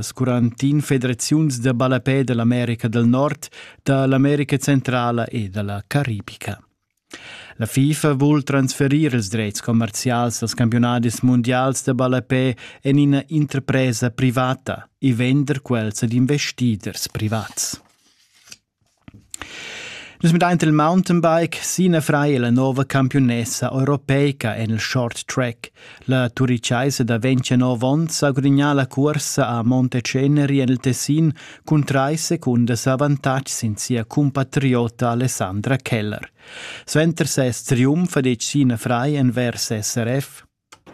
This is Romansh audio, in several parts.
As quarantin federaziuns da ballapè da l'America del Nord, da l'America Centrala e da la Caribica. La FIFA vul transferir ils drets commercials als campionadis mundials da ballapè en ina interpresa privata e vender quels ad investiders privats. Nus mettein il mountain bike Sina Frei la nova campiunessa europeica en il short track. La turichaisa da 29 onns ha gudignà la cursa a Monteceneri en il Tessin cun trais secundas avantatg sin sia cumpatriota Alessandra Keller. Suenter ses triumf ha detg Sina Frei envers SRF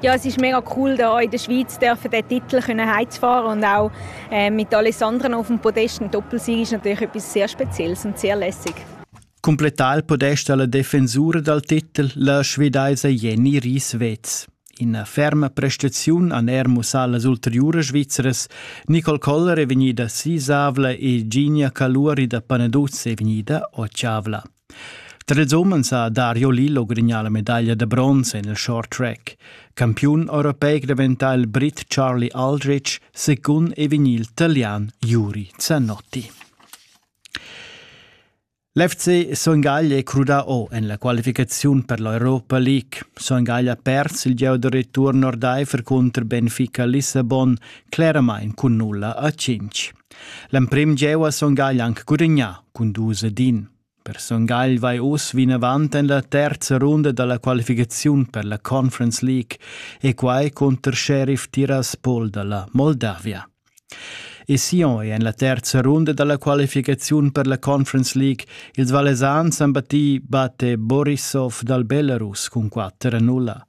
Ja, es ist mega cool, da auch in der Schweiz dürfen den Titel können heimzufahren und auch äh, mit Alessandren auf dem Podest. Ein Doppelsieg ist natürlich etwas sehr Spezielles und sehr lässig. Completar podest alla defensura dal titel la svedaisa Jenny Rieswetz. In ferma prestaziun an Ermus allas ulteriuras Svizzeras, Nicole Koller è vegnida sisavla e Ginia Caluri da Panaduz è vegnida otschavla. Tar ils umens ha Dario Lillo grignà la medaglia da bronz en il short track. Campiun europeic daventà il Brit Charlie Aldrich secund e vegnì il Italian Juri Zanotti. L'FC Songaglia è crudà o en la qualificaziun per l'Europa League. Songaglia ha perso il gieu da return ordaifer contro Benfica Lissabon, cleramain cun nulla a 5. L'emprim jeu ha Son Gagl anc gudagnà cun dus ed in. Per Son Gagl vai oz vinavant en la terza runda da la qualificaziun per la Conference League e quai cunter Sheriff Tiraspol da la Moldavia. E Sion è en la terza runda da la qualificaziun per la Conference League. Ils Valesans han battì batte Borisov dal Belarus cun 4-0.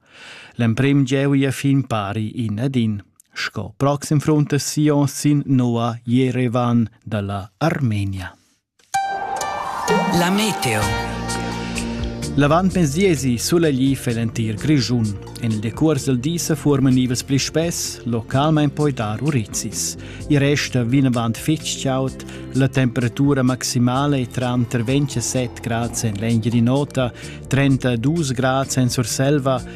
L'emprim gieu è fin pari in ad in. Sco proxim frunt da Sion sin nua Jerevan dalla Armenia. La meteo. L'avant pensiesi sulegli fel entir Grischun. En il decurs del di se formen nivels pli spess, localment poi dar urizis. Il resta vinavant fitg chaud, la temperatura maximale è tranter 27 grad en l'engine nota, 32 grad en Surselva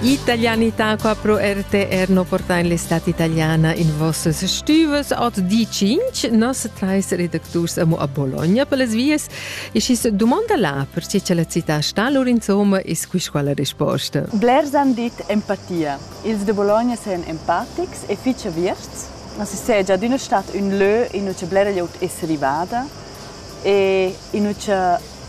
Italianità qua pro RTR no porta in l'estat italiana in vossas stüves ot di 5 nos trais redacturs amo a Bologna per les vies e schis dumonda là perche cha la città sta lur insomma e squis quala risposta. Blers han dit empatia. Ils de Bologna sajan empatics e fitg aviarts. Nossa segia d'üna stat ün lö in ücha blera glieud es rivada e in ücha